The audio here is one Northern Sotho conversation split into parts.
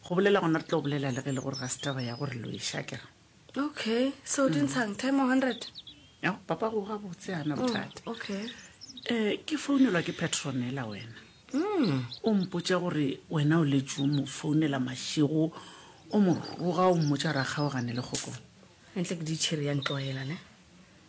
Go bolela gona re tlo bolela le ge le gore ga se taba ya gore lo e sha kere. Okay, so o di ntshang 10 or 100? Ya papa go ga botse ana Oh, bothata. okay. Eh ke founelwa ke Petronella wena. Mm. O mpotša gore wena o letše o mo founela mašego o mo roga o mmotša ra kgaogane le kgokong. Entle ke ditšhiri ya ntloela ne.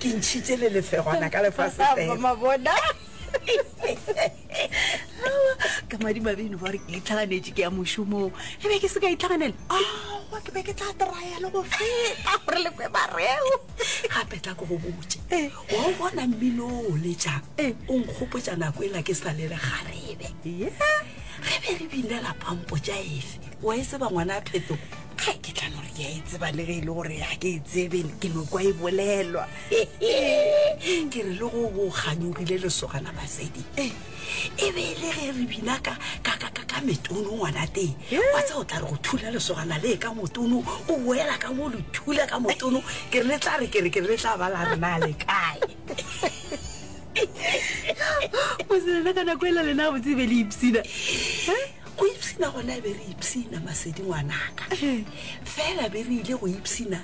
Ke ntšhitše le lefegwana ka lefase fela. Mama bona. Ka madimabe eno ba re ke itlhaganetše ke ya mošomong. E be ke se ka itlhaganela. Aowa ke be ke tla traya le go feta gore le kwe bareo. Gape tla ko go botse. Eh. Wa o bona mmino o letšang. Eh. O nkgopotša nako e la ke sa le le garebe. Yeah. Ge be re binela pampo tša efe. Wa e tseba ngwana a phetogo. ga ke tla no re ke a e tseba le ge e le gore ga ke e tsebe ke no kwa e bolelwa ke re le go go kganyogile lesogana basedi e be e le ge re bina ka ka ka ka ka metono ngwana teng wa tsa o tla re go thula lesogana le ka motono o boela ka mo le thula ka motono ke re le tla re ke re ke re le tla ba la rena le kae moselena ka nako e la lena botsebe le ipsina Go ipshina gona be re ipshina masedi ngwanaka. Fela be re ile go ipshina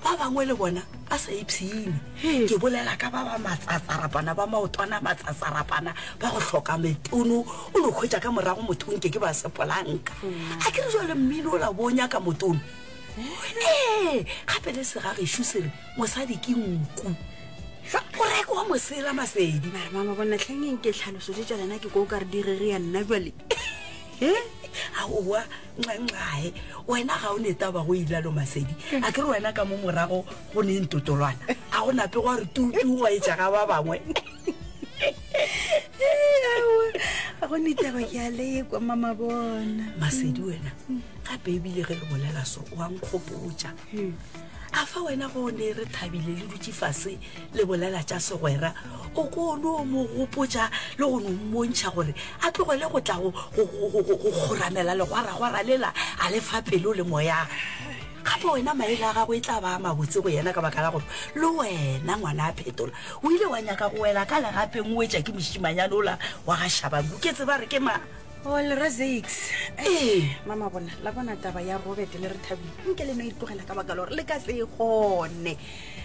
ba bangwe le bona ba sa ipshine. Ke bolela ka ba ba matsatsarapana ba maotwana matsatsarapana ba go hloka metono o no khwetša ka morago motho o nke ke ba sepolanka. A ke re jwale mmino o la bo o nyaka motono. Ee, gape le segagešu se re Mosadi ke nku. Sa o reko wa mosela masedi. Mara mama bona tlhengeng ke tlhaloso tše tša lena ke ko ka re di rere ya nna jwale. He? Aowa nqanqae wena ga o netaba go ilalo masedi a ke re wena ka mo morago go ne ntotolwana a go nape go a re tutu wa etša ga ba bangwe a go netaba ke a lekwa mama bona masedi wena gape ebile ge re bolela so wa nkgopotša a fa wena go ne re thabile le dutše fase le bolela tša segwera o ko no mo gopotša le go no mmontšha gore a tlogele go tla go kgoramela legwaragwara lela a le fa pelo le moya gape wena maele a gago e tla ba mabotse go yena ka baka la gore le wena ngwana a phetola o ile wa nyaka go wela ka legapeng o wetša ke mošimanyane ola wa ga shabanku ke tseba re ke ma All Razix. Ee. Mama bona, la bona taba ya Robert le re thabile. Nke le no e tlogela ka baka lore le ka se e gone.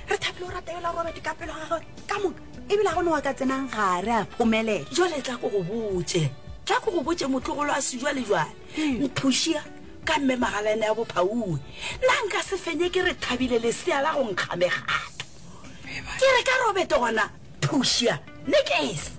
Re thabile o rata yola Robert ka pelo ga gagwe ka moka. E bile ga gone wa ka tsenang gare a phomelela. Jwale tla ko go botse. Tla ko go botse motlogolo a se jwale jwale. Mphušia ka mme magalaene ya bophauwe. Nna nka se fenye ke re thabile lesea la go nkga megato. Ke re ka Robert gona phušia. Nekese.